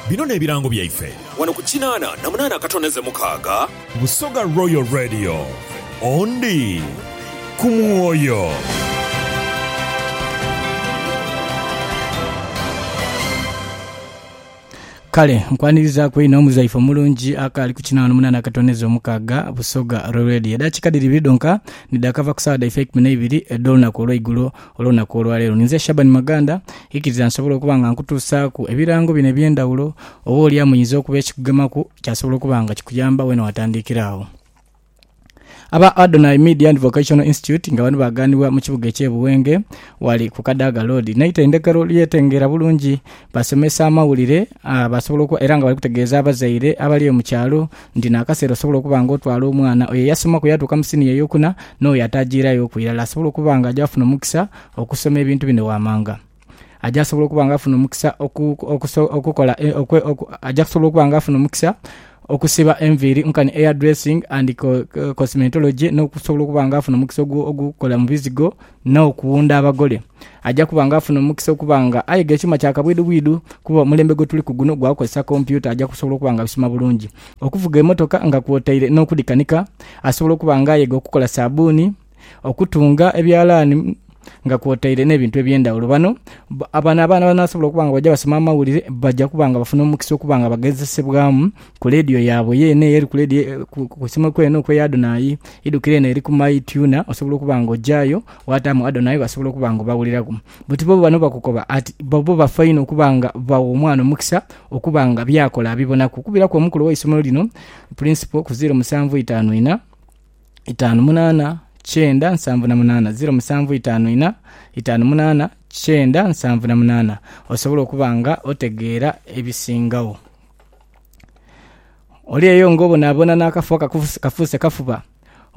Bino n'ebirango byaife. Wano ku kinaana na munaana akatoneze mukaaga. Busoga Royal Radio, Ondi ku mwoyo. Kale nkwanirizaku inho muzaife omulungi akaali ku kinaana omunana akatoneza omukaaga busoga roredi edakika dhiri ibiri dhonka nidhakava ku saawa dhaife ekumi neibiri edh'olunaku olweigulo Olunaku olwaleero ninze Shaban Maganda, ikiriza nsobole okuba nga nkutuusaaku ebirango bino eby'endhawulo, oba oli amuyinza okuba ekikugemaku kyasobola okuba nga kikuyamba weena watandiikira agho. Aba Adonai Media and Vocational Institute nga bano baaganibwa mu kibuga eky'e Buwenge ghali ku Kadaga Road n'eitendekero ly'etengeera bulungi basomesa amawulire aa basobola oku era nga bali kutegeeza abazaire abali eyo mu kyalo Nti n'akaseera osobola okuba nga otwala omwana oyo eyasoma ku yaatuuka mu siniya ey'okuna n'oyo ataajiira y'oku irala asobola okuba nga aja funa omukisa okusoma ebintu bino waamanga. Aja sobola okuba nga afuna omukisa oku, oku, okukola, okwe, oku, aja kusobola okuba nga afuna omukisa okusiba enviiri nkani hairdressing and cosmetology n'okusobola okuba nga afuna omukisa ogw'okukola mu bizigo n'okuwunda abagole. Aja kuba nga afuna omukisa okuba nga ayiga ekyuma kya kabwidhubwidhu kuba omulembe gwe tuliku guno gwa kukozesa kompyuta aja kusobola okuba nga abisoma bulungi. Okuvuga emotoka nga kwotaire n'okudhikanika, asobola okuba nga ayega okukola sabuuni, okutunga ebyalaani nga kwotaire n'ebintu eby'endhaghulo. Bano bano abaana banasobola okuba nga bw'oja basoma amawulire baja kuba nga bafuna omukisa okuba nga bagezesebwamu Ku leediyo yaabwe yeene eyo eri ku leediyo, ku simu kwene okwo eya Adonai, idhukira eno eri ku My Tuner, osobola okuba nga ojaayo waataamu Adonai basobola okuba nga obawuliraku. Buti bo bano bakukoba ati bobo bafa inho okuba nga bagha omwana omukisa okuba nga by'akola abibonaku. Okubiraku omukulu ow'eisomero lino, Principal, ku ziiro musanvu itaanu inha, itaanu munaana, kyenda nsanvu na munaana, ziiro musanvu itaanu inha, itaanu munaana, kyenda nsanvu na munaana, osobola okuba nga otegeera ebisingagho Oli eyo ng'obonaabona n'akafo akafuuse kafuba,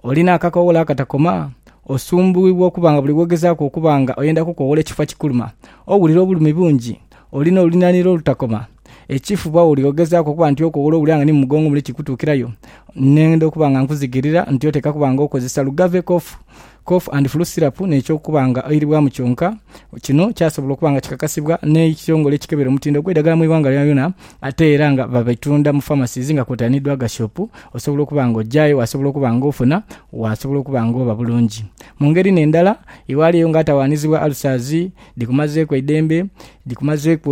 oli n'akakowolo akatakoma, osumbuughibwa okuba nga buli w'ogezaaku okuba nga oyenda kukowoola ekifo kikuluma. Owulira obulumi bungi, oli n'oluninhanhira olutakoma. Ekifuba oli ogezaaku okuba nti okowoola owulira nga ni mu mugongo mule kikutuukirayo, n'oyenda okuba nga nkuzigirira nti oteekwa kuba nga okozesa lugave kofu. Cough and Flu Syrup n'eky'okuba nga oiribwamu kyonka. Kino kyasobola okuba nga kikakasibwa n'ekitongole ekikebera omutindo gw'eidagala mu ighanga lyonalyona ate era nga babitunda mu pharmacies nga kwotaire ni Dwaga Shop osobola okuba nga ojayo wasobola okuba nga ofuna wasobola okuba nga oba bulungi. Mu ngeri n'endala iwaliyo nga atawaanizibwa ulcers, dhikumazeeku eidembe, dhikumazeeku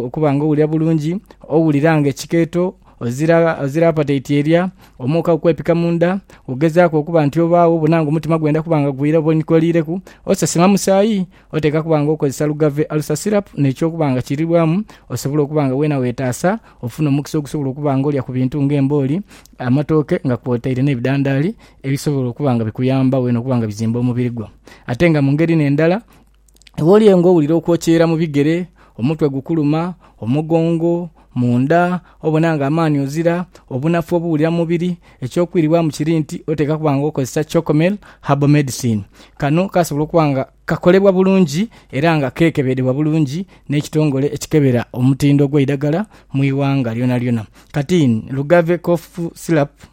okuba nga owulira bulungi, owulira nga ekikeeto Ozira apataiti erya omwoka kukwepika mu nda, ogezaaku okuba nti obaagho obona nga omutima gwenda kuba nga gwira oba onikoliireku, osasira musaayi, oteeka kuba nga okozesa lugave alusa syrup n'eky'okuba nga kirirwamu osobole okuba nga weena weetaasa ofune omukisa ogusobola okuba nga olya ku bintu ng'embooli, amatooke nga kwotaire n'ebidandaali ebisobola okuba nga bikuyamba weena okuba nga bizimba omubiri gwo. Ate nga mu ngeri n'endala, Iwe oli engo owulira okwokyeera mu bigere, omutwe gukuluma, omugongo, mu nda, obona ng'amaani ozira, obunafu obuwulira mu mubiri, eky'okwiribwamu kiri nti oteekwa kuba ng'okozesa Chocomel Herbal Medicine. Kano kasobola okuba nga kakolebwa bulungi era nga keekebedhebwa bulungi n'ekitongole ekikebera omutindo gw'eidagala mu ighanga lyonalyona. Kati ni Lugave Cough Syrup.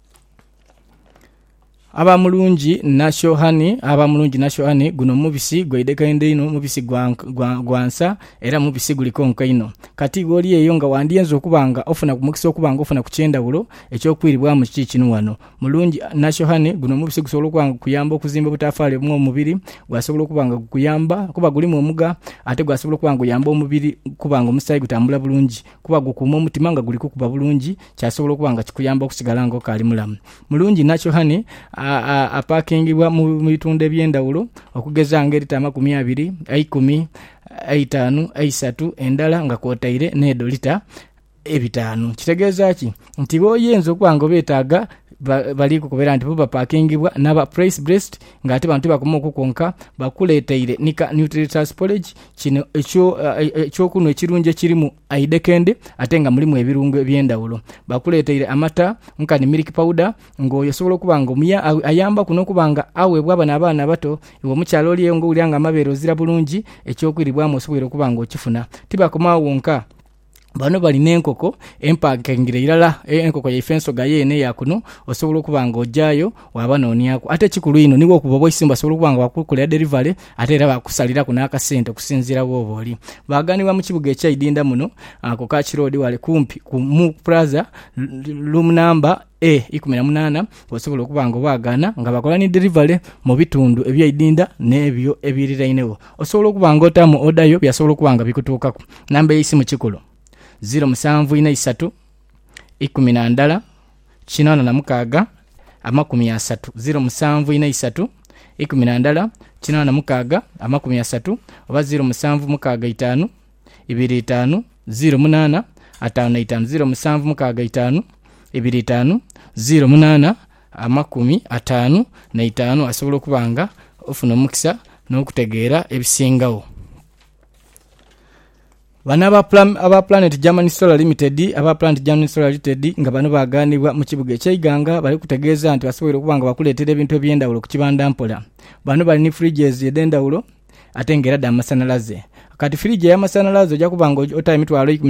Aba mulungi nasyo hani, aba mulungi nasyo hani, guno mubisi gwaidhekaidho inho, mubisi gwa, gwa, gwa nsa, era mubisi guli konka inho. Kati iwe oli eyo nga wandyenze okuba nga ofuna ku mukisa okuba nga ofuna ku ky'endhawulo eky'okwiribwamu kiki kino ghano. Mulungi nasyo hani, guno mubisi gusobola okuba nga gukuyamba okuzimba obutafaali obumwa mu mubiri, gwasobola okuba nga gukuyamba kuba gulimu omugha ate gwasobola okuba nga guyamba omubiri kuba nga omusaayi gutambula bulungi. kuba gukuuma omutima nga guli kukuba bulungi, kyasobola okuba nga kikuyamba okusigala nga okaali mulamu. Mulungi inha Chohane apaakingibwa mu bitundhu eby'endhaghulo, okugeza nga elita amakumi abiri, eikumi, eitaanu, eisatu, endala nga kwotaire n'edho lita ebitaanu. Kitegeeza ki? Nti b'oyinza okuba nga obeetaaga bali kukubera nti bo bapaakingibwa n'aba Price Blessed ng'ate bano tibakoma okwo kwonka, bakuleeteire ni ka Nutritious Porridge Kino eky'okunhwa ekirungi ekirimu aidhekendi ate nga mulimu ebirungo eby'endhaghulo. Bakuleeteire amata nkani milk powder ng'oyo osobola okuba nga omuya... ayambaku n'okuba nga aweebwa bano abaana abato. Iwe omukyala oli eyo ng'owulira nga amabeere ozira bulungi, eky'okwiribwamu osoboire okuba ng'okifuna. Tibakoma agho wonka, Bano bali n'enkoko empankingire irala, enkoko yaife ensoga yeene eya kuno, osobola okuba nga ojaayo waaba nooniaku. Ate ekikulu inho ni bwokuba obwaisimbo basobola okuba nga baakukolera delivery ate era baakusaliraku n'akasente okusinziira bwooba oli. Baaganibwa mu kibuga ekya Idinda muno ku Kach Road wale kumpi ku Mu Plaza, room number. E ikumi na munaana, Osobola okuba nga obaagaana nga bakola ni delivery mu bitundu ebyaidinda n'ebyo ebiirirainegho. Osobola okuba nga otaamu oda yo byasobola okuba nga bikutuukaku. Namba y'eisimu kikulu. Ziro musanvu inha isatu, ikumi na ndala, kinaana na mukaaga, amakumi asatu. Ziro musanvu inha isatu, ikumi na ndala, kinaana na mukaaga, amakumi asatu, oba ziro musanvu mukaaga itaanu. ibiri itaanu ziiro munaana ataanu na itaanu ziiro musanvu mukaaga itaanu ibiri itaanu ziiro munaana amakumi ataanu na itaanu asobola okuba nga ofuna omukisa n'okutegeera ebisingagho. Bano aba Plan- aba Planet German Solar Limited aba Planet German Solar Limited nga bano baaganibwa mu kibuga ekya Iganga bali kutegeeza nti basoboire okuba nga bakuleetera ebintu eby'endhawulo ku kibanda mpola. Bano bali ni fridges edh'endhawulo ate nga era dha masanhalaze. Kati firiji ey'amasanhalaze oja kuba nga otayo emitwalo eikumi.